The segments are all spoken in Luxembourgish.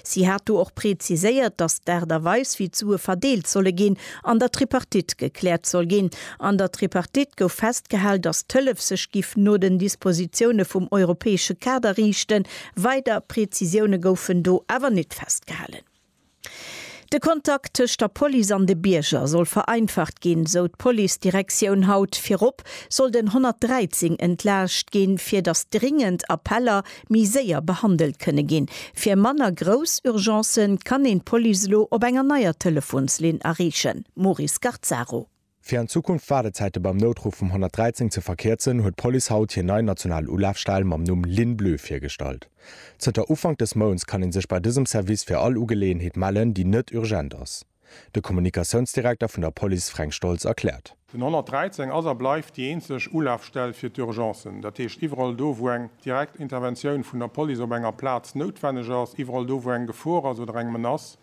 Si hat do och preziséiert, datt d'Aart a Weis, wéi d'Sue verdeelt solle ginn, an der Tripartite gekläert soll ginn. An der Tripartite gouf festgehal, datt d'Hëllef sech giff no den Dispositioune vum europäesche Kader riichten. Weider Prezisioune goufen do awer net festgehalen. De Kontakt tëscht der Police an de Bierger soll vereinfacht ginn, esou d'Policedirektioun haut. Virop sollt en 113 entlaascht ginn, fir datt dringend Appeller méi séier behandelt kënne ginn. Fir manner grouss Urgencë kann een d'Police elo op enger neier Telefonslinn erreechen, Maury Scarzaro. Fir an Zukunft d'Waardezäite beim Noutruff vum 113 ze verkierzen, huet d'Police haut hir nei national Ulafstell mam Numm Ligne Bleue virgestallt. Zënter Ufank dës Mounts kann ee sech bei dësem Service fir all Ugeleeënheet mellen, déi net urgent ass. De Kommunikatiounsdirekter vun der Police Fränk Stoltz erkläert. Den 113 ass a bleift déi eenzeg Ulafstell fir d'Urgencen. Dat heescht, iwwerall do, wou eng direkt Interventioun vun der Police op enger Plaz noutwenneg ass, iwwerall do, wou eng Gefor ass oder eng Menace,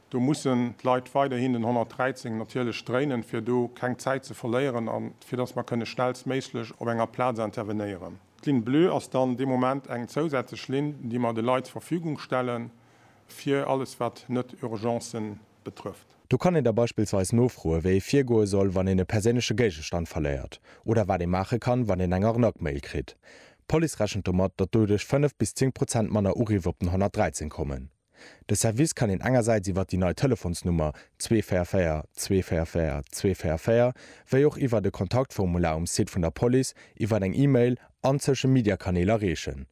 do mussen d'Leit weiderhin den 113 natierlech dréinen, fir do keng Zäit ze verléieren a fir dass mer kënne schnellstméiglech op enger Plaz intervenéieren. D'Ligne bleue ass dann dee Moment eng zousätzlech Linn, déi mer de Leit zur Verfügung stellen, Fir alles wat net Urgencen betrëfft. Do kann een da beispillsweis nofroe wéi ee virgoe soll wann een e perséinleche Géigestand verléiert, oder wat ee maache kann wann een eng Arnaque-Mail kritt. D'Police rechent domat, datt doduerch 5 bis 10 Prozent manner Uriff op den 113 kommen. De Service kann een engersäits iwwer déi nei Telefonsnummer 244 244 244, wéi och iwwert e Kontaktformular um Site vun der Police, iwwert eng E-Mail an Social-Media-Kanäl erreechen.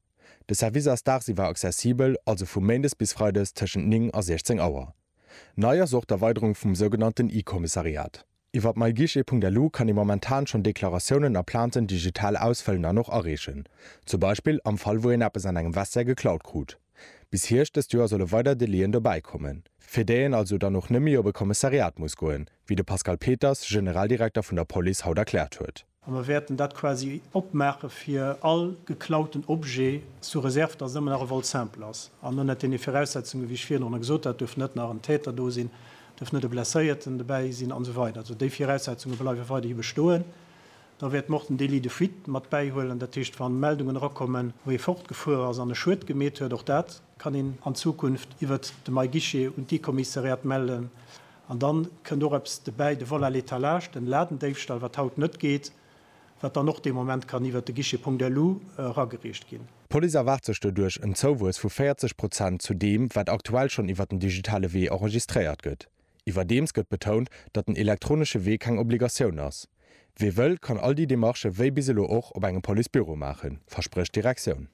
De Service ass dagsiwwer accessibel, also vu méindes bis freides tëschent 9 a 16 Auer. Nei ass och d'Erweiderung vum sougenannten e-Kommissariat. Iwwer myguichet.lu kann ee momentan schonn Deklaratiounen a Plainten digital ausfëllen an och areechen, zum Beispill am Fall wou een eppes an engem Vestiaire geklaut krut. Bis Hierscht dëst Joer solle weider Delaien dobäi kommen, fir déi een also dann och net méi op e Kommissariat muss goen, wéi de Pascal Peters, Generaldirekter vun der Police, haut erkläert huet. A mer wäerten dat quasi opmaache fir all geklauten Objet sous réserve, dass en ëmmer nach e vol simple ass an ënnert deene Viraussetzungen, wéi ech virdrun gesot hat, duerf net nach en Täter do sinn, duerf net e Blesséierten dobäi sinn an esou weider. Also déi Viraussetzunge bleiwe weiderhi bestoen. Da wäerte mer och den Délit de fuite mat bäihuelen, dat heescht, wann Meldungen erakommen, wou ee fortgefuer ass an e Schued gemeet huet, och dat kann een an Zukunft iwwert de MyGuichet un d'I-Kommissariat mellen. An dann kënnt och eppes dobäi, de Vol à l'étalage, den Ladendéifstall, wat haut net geet, wat dann och dee Moment kann iwwert de Guichet Punkt Elu eragereecht ginn. D'Police erwaart sech doduerch en Zouwuess vu 40 Prozent zu deem, wat aktuell schonn iwwert den digitale Wee enregistréiert gëtt. Iwwerdeems gëtt betount, datt den elektronesche Wee keng Obligatioun ass. Wie wëll, kann all déi Demarchë wéi bis elo och op engem Policebüro maachen, versprécht d'Direktioun.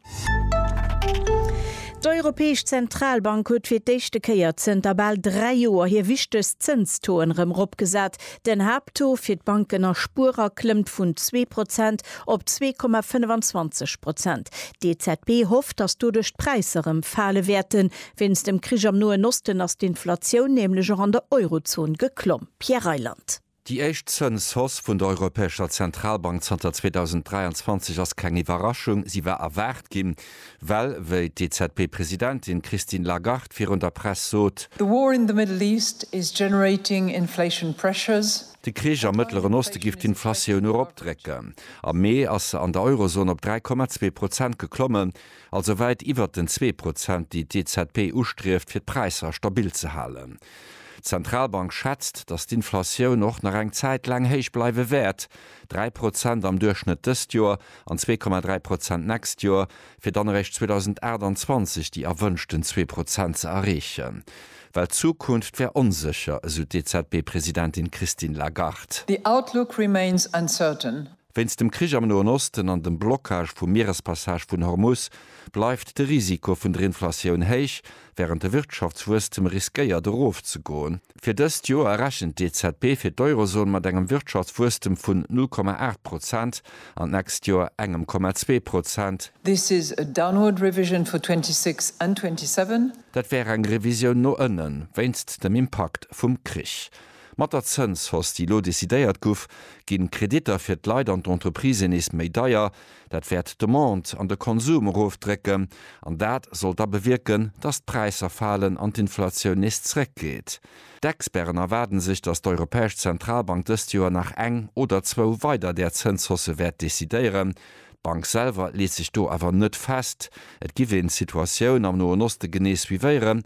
D'Europäesch Zentralbank huet fir d'éischte Kéier zënter bal dräi Joer hir wichtegst Zënstoen erëm eropgesat. Den Haapttaux fir d'Banken a Spuerer klëmmt vun zwee Prozent op zwee Komma 25 Prozent. D'EZB hofft, datt doduerch d'Präisser erëm fale wäerten. Wéinst dem Krich am Noen Osten ass d'Inflatioun nämlech och an der Eurozon geklomm. Pierre Reyland. Déi éischt Zënshausse vun der Europäescher Zentralbank zanter 2023 ass keng Iwwerraschung. Si war erwaart ginn, well, wéi d'EZB-Presidentin Christine Lagarde virun der Press sot, The war in the Middle East is generating inflation pressures. De Krich am Mëttleren Oste giff d'Inflatioun eropdrécken. Am Mee ass se an der Eurozon op 3,2 Prozent geklommen, also wäit iwwert den zwee Prozent, déi d'EZB ustrieft, fir d'Präisser stabil ze halen. D'Zentralbank schätzt, datt d'Inflatioun och nach eng Zäit laang héich bleiwe wäert, 3 Prozent am Duerchschnëtt dëst Joer an 2,3 Prozent nächst Joer, fir dann eréischt 2028 déi erwënschten zwee Prozent ze erreechen. Well d'Zukunft wär onsécher, esou d'EZB-Presidentin Christine Lagarde. The outlook remains uncertain, Wéinst dem Krich am Noen Osten an dem Blockage vum Mierespassage vun Hormus bleift de Risiko vun der Inflatioun héich, wärend de Wirtschaftswuesstem riskéiert erofzegoen. Fir dëst Joer rechent d'EZB fir d'Eurozon mat engem Wirtschaftswuesstem vun 0,8 Prozent an d'nächst Joer engem 0,2 Prozent. This is a downward revision for 26 and 27. Dat wär eng Revisioun no ënnen, wéinst dem Impakt vum Krich. Mat der Zënshausse, déi elo decidéiert guff, ginn d'Kreditter fir d'Leit an d'Entreprisen nees méi deier. Dat wäert d'Demande an de Konsum erofdrécken an dat soll da bewierken, dass d'Präisser falen an d'Inflatioun nees zréckgeet. D'Experten erwaarden sech, dass d'Europäesch Zentralbank dëst Joer nach eng oder zwou weider där Zënshausse wäert decidéieren. D'Bank selwer leet sech do awer net fest. Et giff een d'Situatioun am Noen Oste genee suivéieren